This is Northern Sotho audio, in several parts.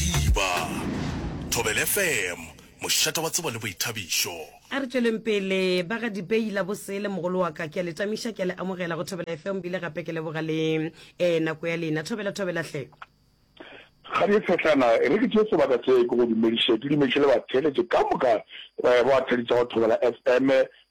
Diba, Thobela FM, mošate wa tsebo le boithabišo. A re tšweleng pele ba ga Dipei la bosele mogolo wa ka ke a le tamiša ke a le amogela go Thobela FM bile gape ke leboga le eh nako ya lena Thobela Thobela hle. Kgabje Tshetlana e re ke tšee sebaka se ke go dumediše ke dumediše le batheeletše ka moka eh ba thadišago Thobela FM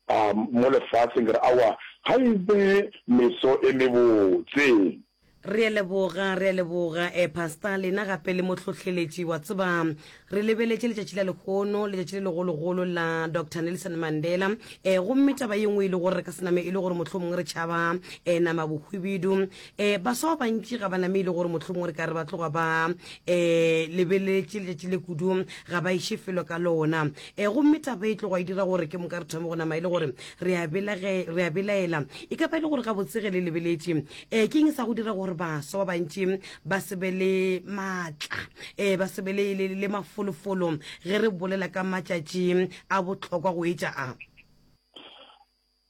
ah mo lefaseng ke re aowa ga e be meso e mebotse. Re a leboga, re a leboga, eh, Pastor, lena gape le mohlohleletši. Wa tseba, re lebeletše letšatši la lehono, letšatši le legologolo la Doctor Nelson Mandela. Eh, gomme taba ye nngwe e le gore re ka se name e le gore mohlomongwe re tšhaba eh, nama bohwibidu. Eh, baswa ba bantši ga ba name e le gore mohlomongwe re ka re ba tloga ba eh, lebeletše letšatši le kudu, ga ba iše felo ka lona. Eh, gomme taba e tloga e dira gore ke moka re thome go nama e le gore re a belaela. E ka ba e le gore gabotsege le lebeletše um ke eng sa go dira gore baswa ba bantši ba se be le maatla um ba se be le mafolofolo ge re bolela ka matšatši a bohlokwa go etša a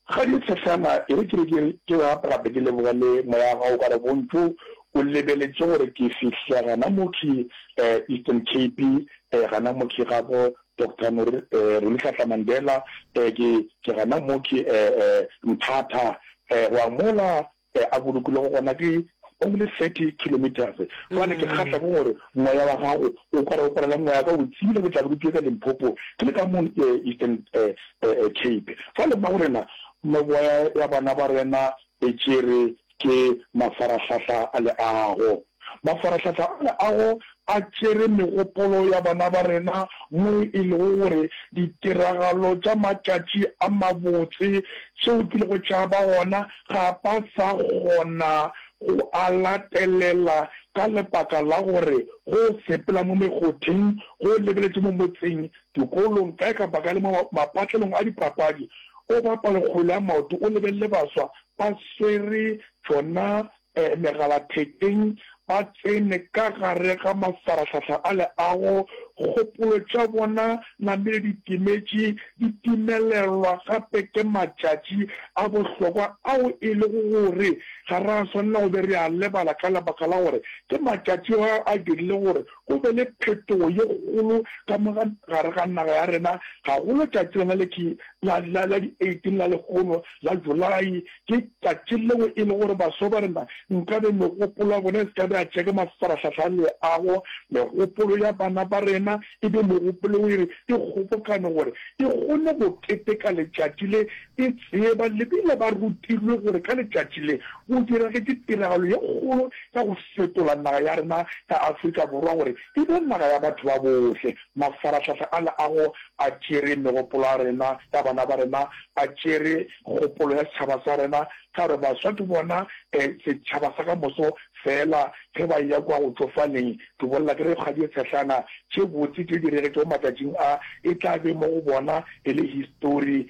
ga di tshehlana e re kere ke gape gape ke leboga le moya ga o ka re bontlo o lebeletše gore ke fihla gana mokhi um eastern cape um gana mokhi gabo Doctor no re, eh, Rolihlahla Mandela, eh, ke, ke gana mo ke, eh, eh, nthatha, eh, go a mola, eh, a bolokilego gona ke only thirty kilometres, gobane ke kgahla ke gore moya wa gago o kwara, o kwarela moya ka o tsile ke tla be ke tšwe ka Limpopo ke le ka mo, eh, Eastern, eh, eh, Cape. Jwale mma go rena, moya ya bana ba rena e tšere Ke mafarahlahla a leago. Mafarahlahla a leago a tšere megopolo ya bana ba rena mo e lego gore ditiragalo tša matšatši a mabotse tšeo di lego tša ba gona ga ba sa kgona go a latelela ka lebaka la gore go sepela mo mekgotheng, go lebeletše mo motseng, dikolong, kae kapa kae le mo mapatlelong a dipapadi. O bapale kgwele ya maoto, o lebelele baswa ba swere tšona megalathekeng, ba tsene ka gare ga mafarahlahla a leago, kgopolo tša bona namele di timetše, di timelelwa gape ke matšatši a bohlokwa ao e lego gore ga ra swanela go be re a lebala ka lebaka la gore ke matšatši ao a dirile gore go be le phetogo ye kgolo ka mo gare ga naga ya rena, gagolo tšatši lena le ke la di 18 la lekgono la Julayi. Ke tšatši leo e le gore baswa ba rena nkabe megopolo ya bona e se ka be ya tšea ka mafarahlahla a leago, megopolo ya bana ba rena e be megopolo yeo e re e kgobokane gore e kgone go keteka letšatši le E tseba, le bile ba rutilwe gore ka letšatši le, go diragetše tiragalo ye kgolo ya go fetola naga ya rena ya Afrika Borwa gore e be naga ya batho ba bohle. Mafarahlahla ale a go a tšere megopolo ya rena, ya bana ba rena, a tšere kgopolo ya setšhaba sa rena, ka gore baswa ke bona setšhaba sa ka moso feela. Ge ba eya kua go tšofaleng, ke bolela ke re kgwadi e tshehlana, tše botse tše diregetšego matšatšing a, e tla be mo go bona e le histori.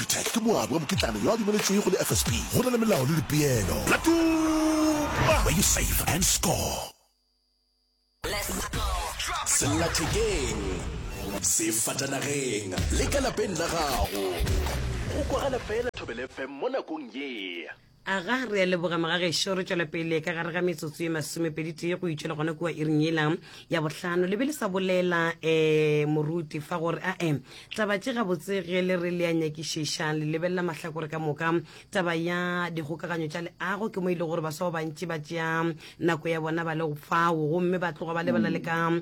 Peter ke moabi wa mokitlana yo a dumeletšwego le FSP. Go na le melao le dipeelo. La Tuma! Where you save and score. Sellathekeng, sefatanageng le ka lapeng la gago. Go kwagala fela Thobelefm mo nakong ye. Aga, re a leboga magagešo, re tšwela pele ka gare ga metsotso ye masomepeditee go itšwela gona kua iring yela ya bohlano. Le be le sa bolela um moruti fa gore ae taba tše gabotse ge le re le a nyakišiša le lebelela mahlakore ka moka. Taba ya dikgokaganyo tša leago ke mo e le gore baswa ba bantši ba tšea nako ya bona ba le fao gomme ba tloga ba lebala le ka um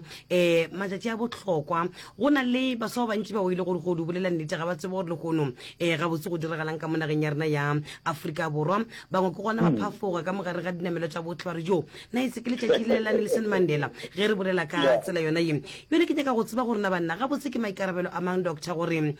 matšatši a bohlokwa go na le baswa ba bantši ba o ile gore go di bolela nnete ga ba tsebe gore lehono um eh, gabotse go diragalang ka mo nageng ya rena ya aforika borwa bangwe ke gona ba hmm. phafoga ka mogare ga dinamelo tša botlhe ba re jo na e se ke letšatši le la nelson mandela ge re bolela ka tsela yona ye yone ke nyaka go tseba gore na banna gabotse ke maikarabelo a mang doctor gore um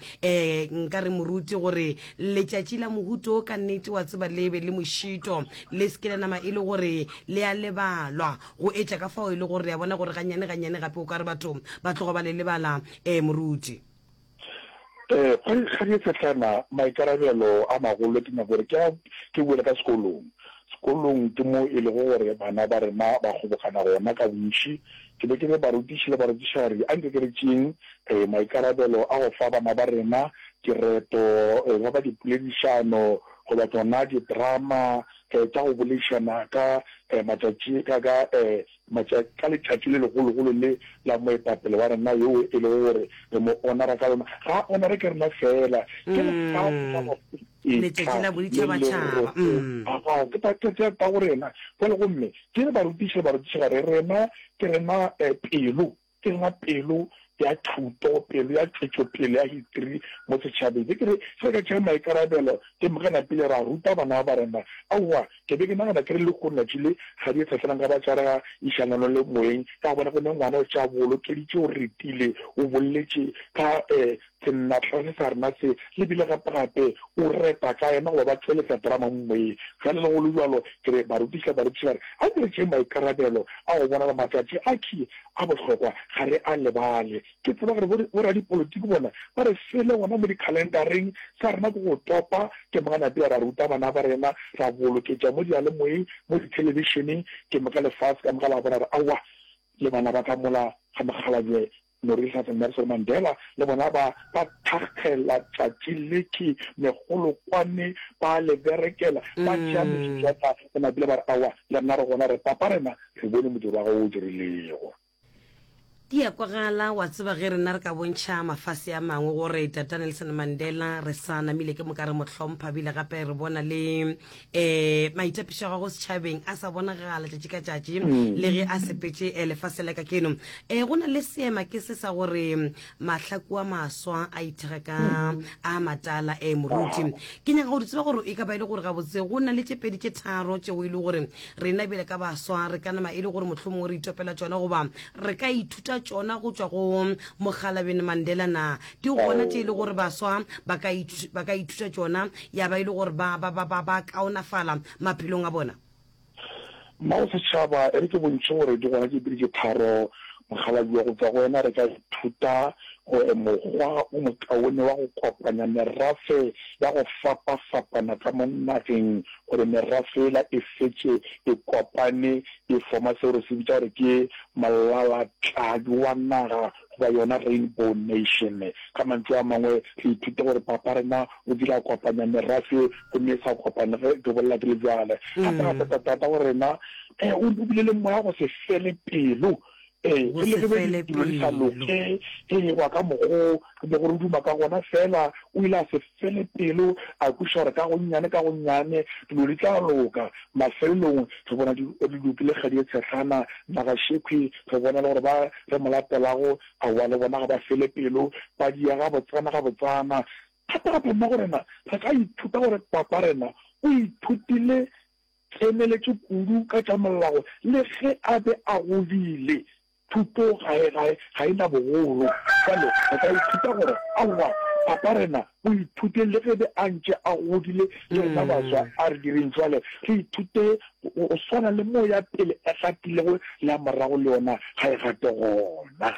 nka re moruti gore letšatši la mohuto ka nnete wa tseba lebe le mošito Le se ke la nama e le gore le a lebalwa, go etša ka fao e le gore re a bona gore gannyane gannyane gape o ka re batho ba tloga ba le lebala. Ee, moruti. Ee, ga di, ga di fehlana. Maikarabelo a magolo ke nyaka gore ke a, ke boele ka sekolong. Sekolong ke mo e lego gore bana ba rena ba kgobokana gona ka bontši. Ke be ke re barutiši le barutišari anke ke re tšeeng, ee, maikarabelo a go fa bana ba rena kereto, e ka ba dipoledišano, goba tsona didrama eh, tša go boleišana ka eh, matšatši ka ka eh, matša, ka letšatši le legologolo le la moetapele wa rena yoo e lego gore re mo onara ka lona ga a onare ke rena fela ke lefatshe la bafeta Mm. Letšatši la boditšhabatšhaba, mm. ta go rena jale gomme ke le barutiši le barutišigare rena ke rena eh, pelo Tsenya pelo ya thuto, pelo ya tšwetšopele ya hitri mo setšhabeng. Ge ke re ge re ka tšea maikarabelo, ke mogana pele ra ruta bana ba rena. Aowa, ke be ke nagana ke re lehono letšatši le ga di etsafelang ka ba tšarega išanganong le moeng, ka gobane go ne ngwana o tšea boolokedi tše o retile, o bolletše ka Sennatlane sa rena se lebile gapegape, o repa ka ema goba ba tšweletsa drama mo moyeng. Bjale le go le bjalo, ke re barutiša barutiši ba re, a ke re tšeeng maikarabelo a go bona gore matšatši a key a bohlokwa ga re a lebale. Ke tseba gore boradipolitiki bona ba re sele gona mo dikhalendareng, sa rena ke go topa ke moka napile ra ruta bana ba rena, ra boloketša mo diyalemoyeng, mo dithelebišeneng, ke moka lefase ka moka la bona gore aowa, le bana ba ka mola ga mokgalabje Morerišate Nelson Mandela le bona ba ba thakgela tšatši letši megolokwane ba le berekela, ba tšea mešušata le mabila ba re, Aowa, le rena re gona re papa rena re bone modiro wa gago wo o dirilego. Di a kwagala, wa tseba, ge rena re ka bontšha mafase a mangwe gore Tata Nelson Mandela re sa namile ke moka re mo hlompha bile gape re bona le um maitapišo a gago setšhabeng a sa bonagala tšatši ka tšatši mm. le ge a sepetše um lefase la ka keno um eh, go na le seema ke se sa gore mm, mahlaku a maswa a ithega ka mm. a matala um moruti ke nyaka go di tseba gore e ka ba e le gore gabotse go na le tše pedi tše tharo tšeo e le gore rena bele ka baswa re ka nama e le gore mohlomongwe re itopela tsona goba re ka ithuta tsona go tswa go mogalabene mandela na Ke gona tše e le gore baswa ba ka ithu, ba ka ithuta tšona ya ba e le gore ba, ba, ba, ba, ba kaonafala maphelong a bona. Mma wa Setšhaba, e re ke bontšhe gore di gona tše pedi tše tharo, mokgalabje, go tšwa go wena re ka ithuta gore mokgwa o mokaone wa go kopanya merafe ya go fapafapana ka mo nageng gore merafe yela e fetše e kopane e foma seo re se bitša gore ke mollalatladi wa naga goba yona Rainbow Nation. Ka mantšu a mangwe, re ithute gore Papa rena o kile a kopanya merafe gomme e sa kopane ge e dobolela di le bjale. Gape ra feta Tata wa rena o re bopile le moya wa go se fele pelo, ee, re le ge be ditulo di sa loke, ee, go ya ka mokgo re bego re duma ka gona. Feela o ile a se. Fele pelo a kweša gore ka gonnyane ka gonnyane dilo di tla loka. Mafelelong re bona di loki le kgadi e tshehlana Nagaxekhwi. Re bona le gore ba re mo latelago aowa le bona ga ba fele pelo, ba diya gabotsana gabotsana. Thata gape mo go rena re ka ithuta gore papa rena o ithutile tseneletše kudu ka tša mollago le ge a be a godile. Thuto ga e, ga e, ga e na bogolo. Bjale re ka ithuta gore, Aowa, Papa, rena o ithute le ge be a ntše a godile, le rena baswa. A re direng bjale, re ithute go, go swana le mo ya pele e gatilego le ya morago le yona ga e gate gona.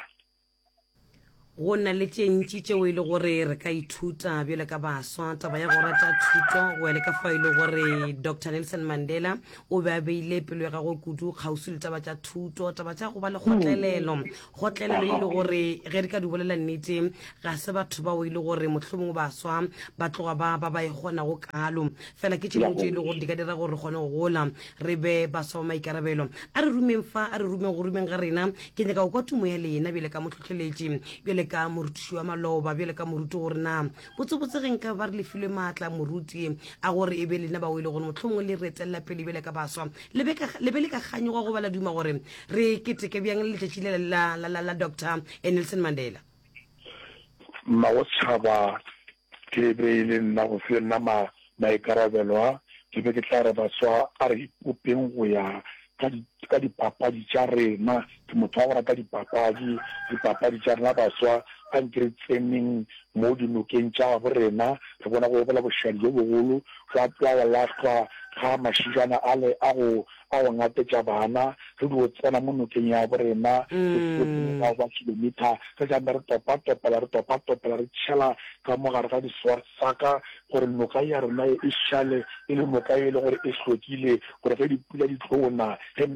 Go na le tše ntši tšeo e le gore re ka ithuta bjale ka baswa. Taba ya go rata thuto go ya le ka fa e le gore Dr Nelson Mandela o be a beile pelo ya gagwe kudu kgauswi le taba tša thuto, taba tša go ba le kgotlelelo. Kgotlelelo e le gore ge re ka di bolela nnete ga se batho bao e le gore mohlomongwe baswa ba tloga ba ba ba e kgonago kalo. Fela ke tše dingwe tše e le gore di ka dira gore re kgone go gola. re be baswa ba maikarabelo a re rumeng fa a re rumeng go rumeng ga rena ke nyaka go kwa tumo ya lena bjale ka motlhotlheletši bjale ka morutiši wa maloba bjale ka moruti gore na botsebotse ge nka ba re lefilwe maatla moruti a gore e be lena ba o e le gore motlhomongwe le re etelela pele bjale ka baswa le be le ka kganyoga go ba la duma gore re keteke bjang le letšatši le la doctor nelson mandela mmago tšhaba Ge e be e le nna, go se na ma, maikarabelo a, ke be ke tla re baswa a re ipopeng go ya ka di, ka dipapadi tša rena. Ke motho wa go rata dipapadi, dipapadi tša rena baswa. A nke re tseneng mo dinokeng tša gabo rena, re bone go bola bošadi bjo bogolo, jwa, jwa go lahlwa ga mašijana ale a go ka go ngatetša bana, re dio tsena mo nokeng yabo rena, re tlile mo morago ga kilometre, re tla nna re topatopela, re topatopela, re tšhela ka mo gare ga di-swartsaka, gore noka ya rena ye e šale e le noka ye e le gore e hlwekile, gore ge dipula di tlo na, ge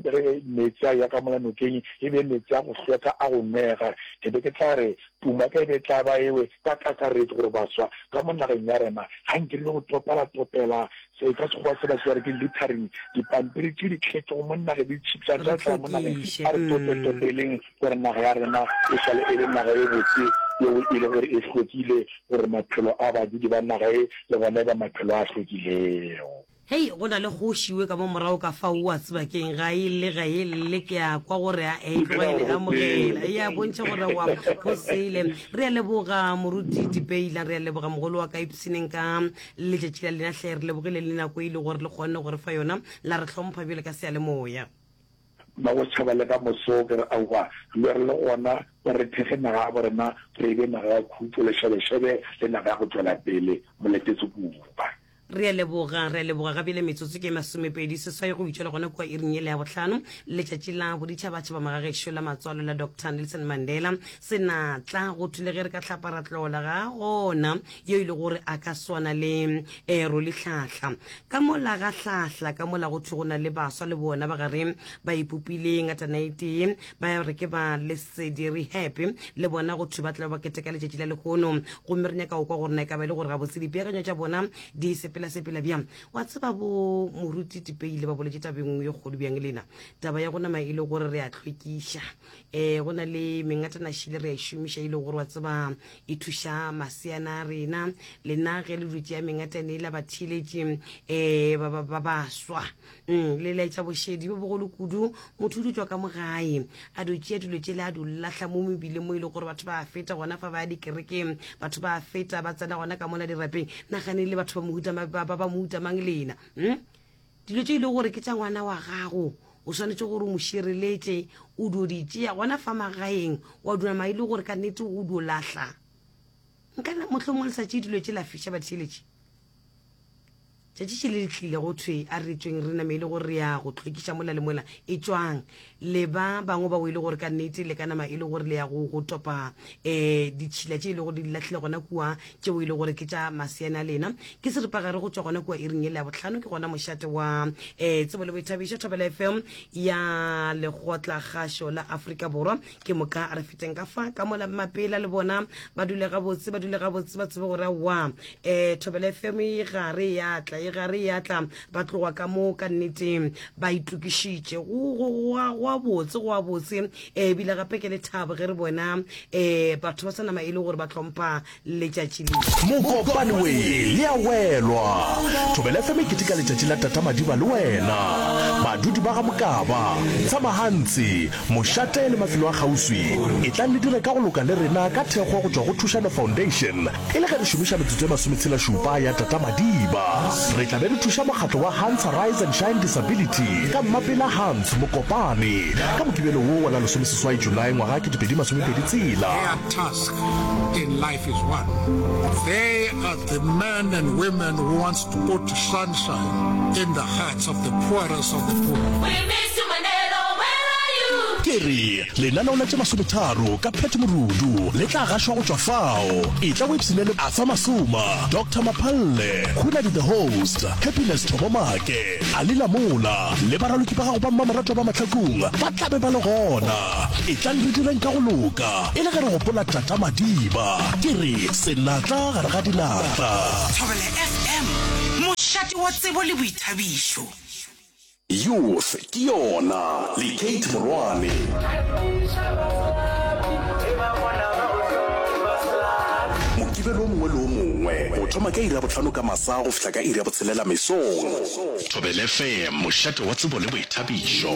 meetse a ya ka mola nokeng, e be meetse a go hlweka a go nwega. Ke be ke tla re, Pumaka e be e tla ba ewe ka kakaretšo, gore baswa ka mo nageng ya rena, ga nke re le go topalatopela Ee, ka Sekgowa se batho ba re ke littering, dipampiri tše di tlhetšego mo naga di tšhipša tša tla mo nageng. A re tope-topeleng gore naga ya rena e šale e le naga e botse yeo e le gore e hlwekile gore maphelo a badudi ba naga ye le gona e ba maphelo a hlwekilego. Hei, go na le kgoši we ka mo morago ka fao, o a tseba keng, ga e lle, ga e lle, ke a kwa gore a e tlogele, e amogele, e a bontšha gore wa, go sele. Re a leboga, Moruti Dibeyla, re a leboga, mogolo wa ka Ipsineng ka Letšatši la lena hle re lebogile le nako e le gore le kgonne gore fa yona la re hlompha bjale ka seyalemoya. Magochaba le ka moso ke re aowa lo re le gona o re thekge naga ya borena gore e be naga ya khutšo le šebešebe le naga ya go tšwela pele moletetse kupa. Re a leboga, re a leboga ga bjale metsotso ke masomepedi seswai go bitšwa le gona kua iring yela ya bohlano letšatši la boditšhabatšhaba magagešo la matswalo la Doctor Nelson Mandela se na tla go thule ge re ka hlapa ra tlola ga gona yo e le gore a ka swana le ero le hlahla ka mola ga hlahla ka mola go thwe go na le baswa le bona ba gare ba ipopile ngatanaetee ba re ke ba lesedi re happy le bona go thwe ba tla ba keteka letšatši la lehono gomme re nyaka go kwa gore na e ka ba e le gore gabotse dipeakanyo tša bona di sepelasepela bjang wa tseba bo moruti tipeile ba boletše tabeng yo kgolo bjang lena taba ya go nama e le gore re a tlhwekiša eh go na le mengatanašile re a išomiša e, e le gore wa tseba e thuša maseana a rena lena ge le dutse ya mengatane la batheeletše um eh, ba baswa mm, le laetša bošedi bo bogolo kudu motho o dutšwa ka mogae a dutšea dilo tšele a dulahla mo mebileng mo e le gore batho ba feta gona fa ba ya dikerekeng batho ba feta ba tsena gona ka mola dirapeng nagane le batho ba mo utamang lena mm? Dilo tše e lego gore ke tša ngwana wa gago o swanetše gore o mo šireletše, o dio di tšea gona fa magaeng, wa dunama e le gore ka nnete o dio lahla. Nka na motlho mongwe le sa tšee dilo tše la fiša batheeletše. Tšatši tše le le tlile go thwe a re tsweng re name e le gore re ya go tlhwekiša mola le mola e tšwang. le ba bangwe bao e le gore ka nnete le ka nama e le gore le ya go go topa um ditšhila tše e le gore di latlhile gona kua tšeo e le gore ke tša maseane a lena ke seripagare go tšwa gona kua e reng e le ya botlhano ke gona mošate wa um tsebo le boithabišo thobela fm ya legotla gašo la aforika borwa ke moka re feteng ka fa ka mola mapela le bona ba dule gabotse ba dule gabotse ba tsebe gore wa um thobela fm e gare ya tla e gare ya tla ba tloga ka mo ka nnete ba itokišitše goa botse goa botse um ebile gape ke le thabo ge re bona um batho ba sa nama e le gore ba tlhompha letšatši le mokopane we le ya welwa thobele fe mekete ka letšatši la tata madiba le wena badudi ba ga mokaba tshamahantsi mošate le mafelo a kgauswi e tlang le dire ka go loka le rena ka thekgo go tšwa go thušano foundation E le ge re šomiša metsotso e masometshelašupa ya tatamadiba, re tla be re thuša mokgatlo wa Hans Arise and Shine Disability ka Mmapela Hans Mokopane ka Mokibelo wo wa la lesomeseswai Julae ngwaga wa ketepedi masomepedi tshela. Their task in life is one, they are the men and women who wants to put sunshine in the hearts of the poorest of the poor. We miss you Mandelo, where are you? Ke re, Lenaneo la tše masometharo ka Pat Morudu le tla gašwa go tšwa fao. Etla o ipshine le Arthur Masuma, Doctor Maphalle, Hunadi the Host, Happiness Thobomake, Ali Lamola le baraloki ba gago ba mmamoratwa ba mahlakong ba tla be ba le gona. Etlang re direng ka go loka e le ge re gopola Tata Madiba. Ke re senatla gare ga dinatla. Thobela FM, mošate wa tsebo le boithabišo. Youth ke yona le Kate Morwane. Mokibelo o mongwe le o mongwe go thoma ka iri ya bohlano ka masa go fihla ka iri ya botshelela mesong. Thobelefm, mošate wa tsebo le boithabišo.